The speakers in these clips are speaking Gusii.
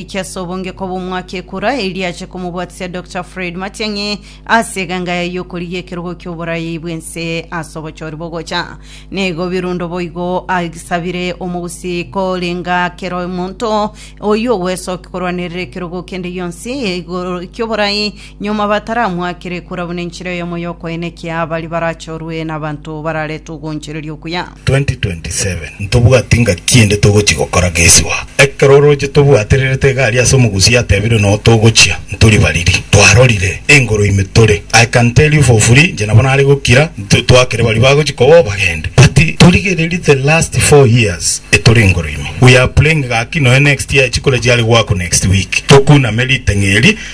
Ekiaso obonge koba omwaka ekura eria ache komobwatisia Doctor Fred Matiang'i ase eganga yaye y'okorigia ekerogo ki'oborayai bw'ense ase obochori bogocha. Nigo birundo boigo asabire omogusi korenga kera omonto oyio ogwesokia korwanerera ekerogo kende gionsi igoro ki'oborayi Nyuma bataramwakire kura buna enchera eyemo y'okoenekia baria barachorwe nabanto bararetwe ogonchereria okuya. 2027 ntobwati ngaki ende togochia gokora gesibao. Ekero oroche tobwatererete iga aria ase omogusi yatebire noo togochia ntori bariri. Twarorire engoro ime tore. I can tell you for free inche nabo nare gokira nto twakere baria bagochia koba obagende. But torigererie the last four years etore engoro ime. We are praying gaki noe next year echikura chiare goakwa next week. Tokuname riteng'eri.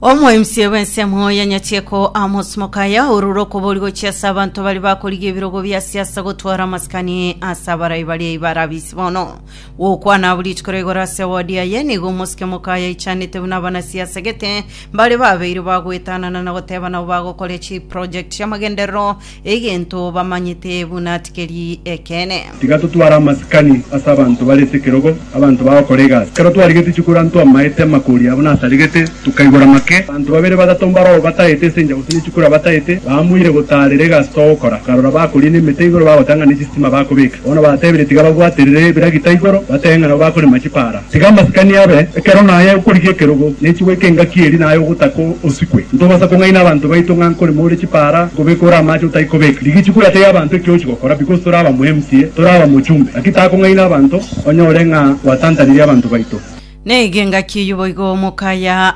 Omoemisi bw'ensemo ya Nyachiko Amos Mokaya orure okobori gochia ase abanto baria bakorigia ebirogo bia siasa gotwara amasikani ase abarai baria iba arabisi bono. Gokwana abwo rituko ria igoro ase wodi aye nigo omosike Mokaya aichanete buna abanasiasa gete baria babeire bagoetanana na goteba nabo bagokoria chiproject chiamagenderero Egento bamanyete buna tikeri ekeene. Tiga totware amasikani ase abanto bare sekerogo, abanto bagokora egasi. Ekero twarigetie chikoro amo twamaete amakori abo nasaregete, tokaigora make. Abanto babere batato mbaroo batagete ase enchera gose ne chikoro abatagete, baamoire gotaarera egasi togokora. Akarora bakoria nemete igoro bagotanga ne chisitima bakobeka. Bono batebire tiga babwaterere ebiragita igoro, batebe ng'a nabo bakorema chipaara. Tiga amasikani abe ekero naye okorigia ekerogo, na echibo eke engaki eri naye ogotaka osikwe. Ntobasa kong'aina abanto baito ng'a nkorema ore chipara, nkobeka ore amache otai kobeka. Rigichi kwerateria abanto ekio ochi gokora because tore aba mu MCA, tore aba mochumbe. Gaki taka kong'aina abanto onye ore ng'a gwatantanirie abanto baito. Neiga engaki eyio boigo omokaya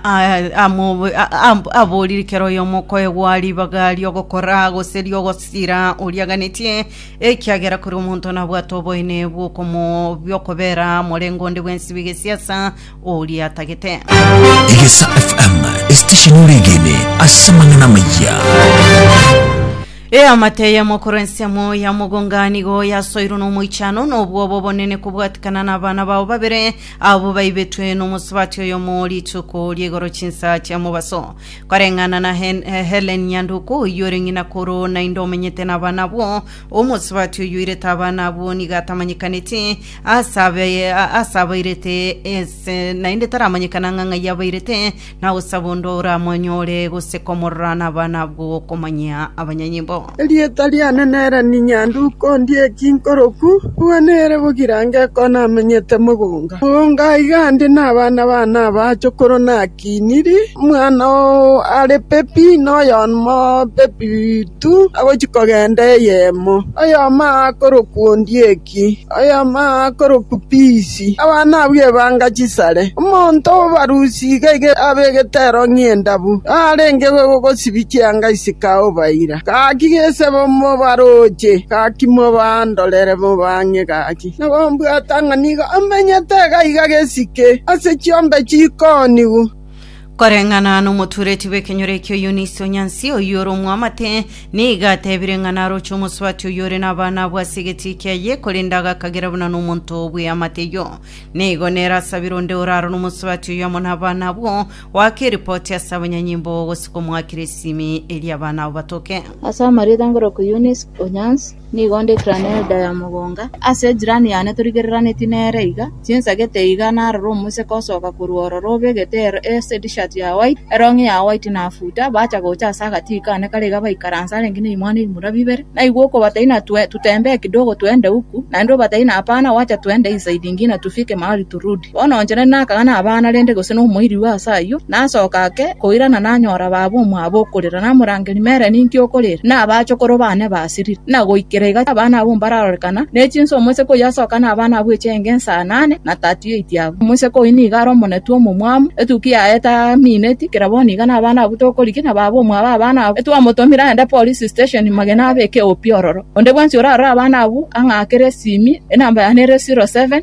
aboriri kera oyomo okoegwa ribaga riogokora gose riogosira oriaganetie. Ekiagera kore omonto nabwate oboyne bw'okomo- bw'okobera morengo onde bw'ensibo egesiasa, oria atagete. Egesa FM, esitesheni oregene ase amang'ana amaya. Eamate eyemo korwa ensemo ya mogonga nigo yasoirwe n'omoichano nobwoba obonene kobwatikana n'abana bao babere abwo baibetwe nomosubati oyomo rituko ri'igoro chinsa chia mobaso. Koreng'ana na Hen- eh, Helen Nyanduko oyio ore ng'ina koro naende omenyete nabana abwo, omosubati oyoirete abana abwo nigo atamanyekaneti ase abe- a- ase abairete ase naende taramanyekana ng'a ng'ai abairete, nagosaba onde oramonyore gose komorora nabana abwo okomanyia abanyanyimbo. Erieta riane nere Ninyanduko, ndie ki nkoroku, nigo nere bogirango ekero namenyete mogonga. Mogonga aiga ande nabana bane aba chokoro nakiniri, omwana o are pepi noyomo pepi tu agochia kogenda eyemo, oyomo aa korokwa ondie ki. omoruki, oyoma akorokwa Pisi, abana abwo ebanga chisare, omonto obarusi iga iga abe egetero ng'endabu, narenge gosibia chianga ase Kaobaira. Gaki gesebo mobaroche, gaki mobandorere mobang'e gaki, na gombwata ng'a nigo amenyete iga iga gesike ase chiombe chikoonigwa. Koreng'ana nomotuureti bw'ekenyoro ekio Yunisi o Nyansi, oyio ore omwamate, nigo ateebire ng'a naroche omosubati oyio ore nabana abwo ase egetii kiaye, korende agakagera buna nomonto bw'eamate eyio. Nigo nere asabire onde oraaro nomosubati oyio amo nabana abwo, oake eripoti ase abanyanyimbo gose komoakera esimi eria abana abo batoke. Ase amarieta ngoroku Yunisi o Nyansi, Nigo ndikirane enda ya mogonga ase ejirani yane torigereraneti nere iga, chinsagete iga narore omoseke osoka korwa ororo obegete esetishirt ya white, elong'i ya white na futa, bacha gocha ase agatii kane kare iga baikaranse arenge neimwana ebimura bibere. Naigwa okobataina tutembeekidogo twende huku, naende obataina hapana, wacha twende inside ingine tufike mahali turudi. Bono onche nari nakaga nabana rende gose nomoirirwa ase ayio, nasoka ake koirana nanyora baaba omwabo okorera, namorangeria, Mere, ninki okorera? Na abachokoro baane basirire, na goikera iga abana abwo mbararorekana, ne chinsa omoiseke oyio asoka nabana abwo echienge inse anane na tatu y'eiti yabo. Omoiseke oyio nigo are omonetwe omomwamu, etukia yaye tamineti, kera bono iga nabana abwo tokorigia, na baaba omwabo abana abwo etwamotomire aende Police Station magena abeke opi ororo. Onde bwensi orarore abana abwo ang'akere esimi, enamba yane ere zero seven.